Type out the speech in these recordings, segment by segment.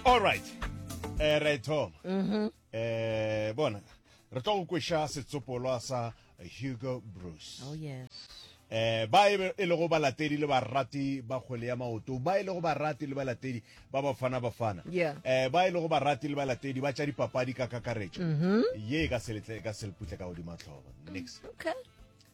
all right eh ra e thoma mhm. eh bona re tlo go kwesha setsopolwa sa hugo bruce oh yes eh ba e, e lego balatedi le barati ba kgwele ya maoto ba e lego barati le balatedi ba bafana bafana eh ba e lego barati le balatedi ba tša dipapadi ka kakaretšo mhm. ye e ka seletle e ka seleputle ka godima tlhoba next okay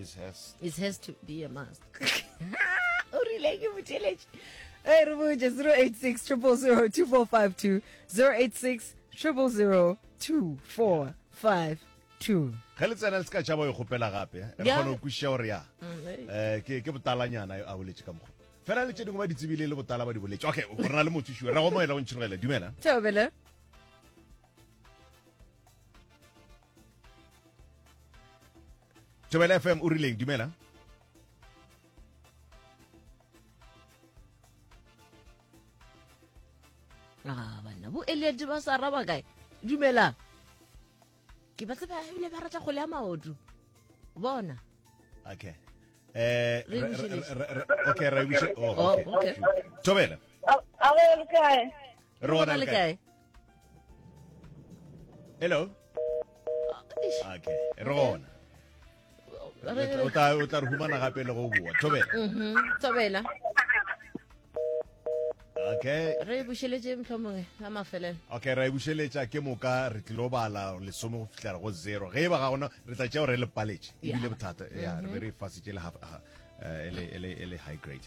it has it has to be a must o rile ke boteletše e re botse 086 000 2452 086 000 2452 ge le tsena le se ka tšhaba go e kgopela gape re Yeah. kgona go kwešiša gore ya Mm, eh. Eh, ke ke botalanyana a boletše ka mokgwa fela le tše dingwe ba di tsebile le botala ba di boletše okay o rena le motho šue ra go moela o ntšhirogela dumela Tšau, Bella. thobela fm o rileng dumela a ah, banna bo eliate ba sa raba kae dumelang ke ba tseba ebile ba ratla kgole ya maoto bona okay eh okay ra e bushe oh, oh okay tobela a re le kae rona le kae hello okay re gona o tla o tla re humana gape le go bua thobela mhm thobela okay re bušeletse mhlomongwe la mafelelo okay re bušeletša ke moka re tlilo bala lesome go fihlela go zero ge e ba ga gona re tla tšeo re le paletše ebile bothata ya re be re e fasitše le half ele ele ele high grade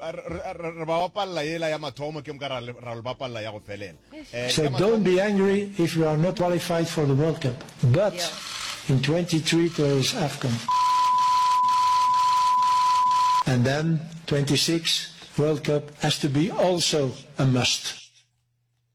Re ba bapalela yela ya mathomo ke moka ra lo bapalela ya go felela. So don't be angry if you are not qualified for the World Cup. But in 23 there is Afcon. And then 26 World Cup has to be also a must.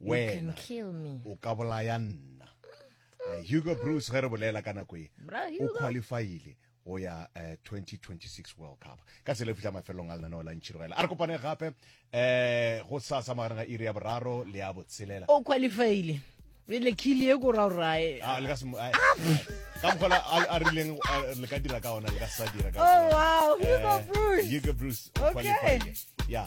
wena o ka bolaya nna eh, hugo bruce ge re bolela ka nako e o qualifyile go ya uh, eh, 2026 world cup ka tsela e fitlha mafelelong a lenaneo la ntšhirogela a re kopane gape um go sasa magareng a iri ya boraro le ya botshelela o qualifyile le khili e ko ra rae ah, le ka se ah! ka mogola a rileng le ka dira ka ona le ka sa dira ka oh wow eh, Hugo Bruce Hugo Bruce okay yeah